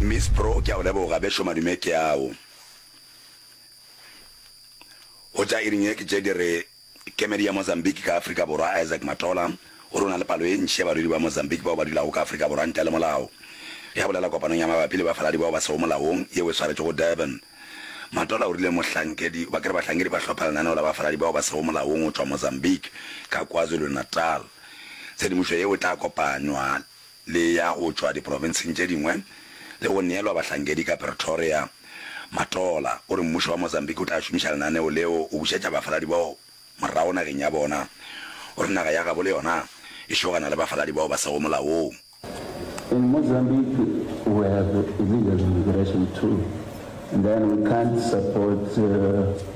Miss Bro ke a go leboga bešo madume ke ao hotša iring ye ke tše di re kemedi ya Mozambique ka Afrika Borwa Isaac Matola o re o na le palo e ntši ya barwedi ba Mozambique bao ba dulago ka Afrika Borwa ntle le molao ge a bolela kopanong ya mabapi le bafaladi bao ba sego molaong yeo e swaretšwego Durban Matola o rile mohlankedi ba kere bahlankedi ba hlopha lenaneo la bafaladi bao ba sego molaong go tšwa Mozambique ka KwaZulu-Natal tshedimošo yeo e tla kopanywa le ya go tšwa diprofenseng tše dingwe le go neelwa bahlankedi ka Pretoria. Matola o re mmušo wa Mozambique o tla šomiša lenaneo leo go bušetša bafaladi bao morago nageng ya bona. O re naga ya gabo le yona e šogana le bafaladi bao ba sego molaong. In Mozambique we have illegal immigration too and then we can't support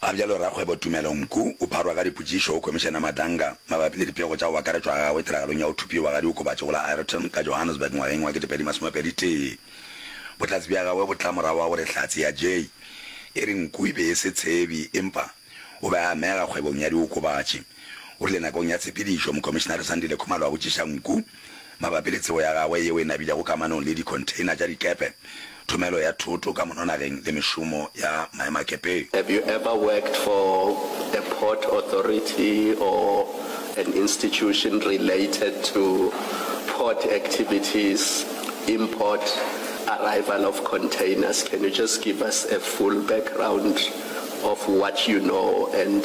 Ga bjalo rakgwebo Tumelo Mku o pharwa ka dipotšišo go Khomišene Madanga mabapi le dipego tša go akaretšwa ga gagwe tiragalong ya go thupiwa ga diokobatši go la Ireton ka Johannesburg ngwageng wa 2021. Bohlatse bja gagwe bo tla morago ga gore Hlatse ya Jay e re nku e be e se tshebi empa o be a amega kgwebong ya diokobatši. O rile nakong ya tshepedišo, Mokhomišenare Sandile Khumalo a botšiša nku, mabapi le tsebo ya gagwe yeo e nabilego kamanong le dikhontheina tša dikepe, thomelo ya thoto ka mononageng le mešomo ya maemakepe. Have you ever worked for a port authority or an institution related to port activities, import, arrival of containers? Can you just give us a full background of what you know and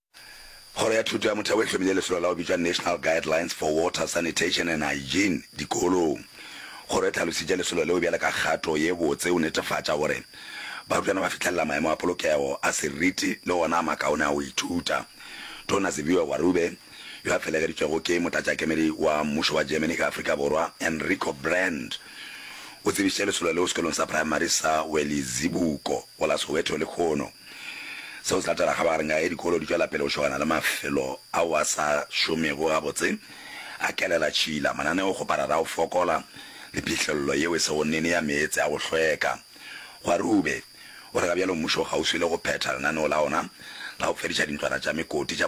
Kgoro ya Thuto ya Motheo e hlomile lesolo la go bitšwa National Guidelines for Water, Sanitation and Hygiene dikolong. Kgoro e hlalositše lesolo leo bjale ka kgato ye botse go netefatša gore barutwana ba fihlelela maemo a polokego a seriti le gona a makaone a go ithuta. Tona Siviwe Gwarube, yo a felegeditšwego ke motlatšakemedi wa mmušo wa Germany ka Afrika Borwa, Enrico Brand, o tsebišitše lesolo leo sekolong sa praemari sa Welizibuko go la Soweto lekhono. Seo se latela kgabagareng ya ge dikolo di tšwela pele go šogana le mafelo ao a sa šomego gabotse, a kelela tšhila, mananeo go parara a go fokola le phihlello yeo e sego nnene ya meetse a go hlweka. Kgwarube o re ga bjalo mmušo o kgauswi le go phetha lenaneo la ona la go fediša dintlwana tša mekoti tša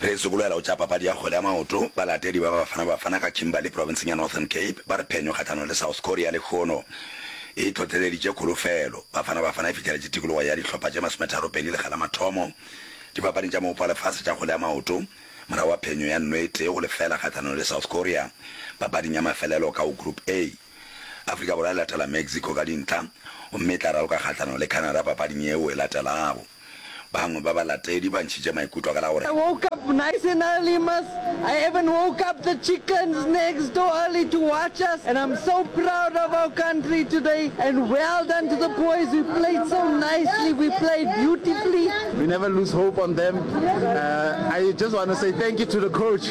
Re sokolela go tša papadi ya kgwele ya maoto, balatedi ba Bafana Bafana ka Kimberley profenseng ya Northern Cape ba re phenyo kgahlanong le South Korea lekhono e hlohleleditše kholofelo. Bafana Bafana e fihleletše tikologo ya dihlopha tše masometharo pedi lekga la mathomo dipapading tša moopo wa lefase tša kgwele ya maoto morago ga phenyo ya nno e tee go lefela kgahlanong le South Korea papading ya mafelelo ka go Group A. Afrika Borwa e latela Mexico ka dintlha gomme e tla raloka kgahlano le Canada papading yeo e latelago. Bangwe ba balatedi ba ntšhitše maikutlo ka la gore. I woke up nice and early mas, I even woke up the chickens next door early to watch us and I'm so proud of our country today and well done to the boys we played so nicely we played beautifully. We never lose hope on them, uh, I just want to say thank you to the coach.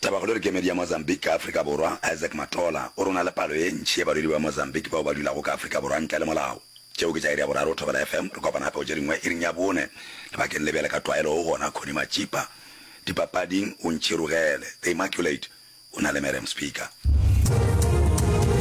Tabakgolo le kemedi ya Mozambique ka Afrika Borwa, Isaac Matola, o re go na le palo ye ntši ye balwedi ba Mozambique bao ba dulago ka Afrika Borwa ntle le molao. Tšeo ke tša iri ya boraro Thobela FM, re kopana gape go tše dingwe iring ya bone. Lebakeng le bjale ka tlwaelo o gona Connie Matšipa. Dipapading, o ntšhirogele, The Immaculate, o na le Merriam Speaker.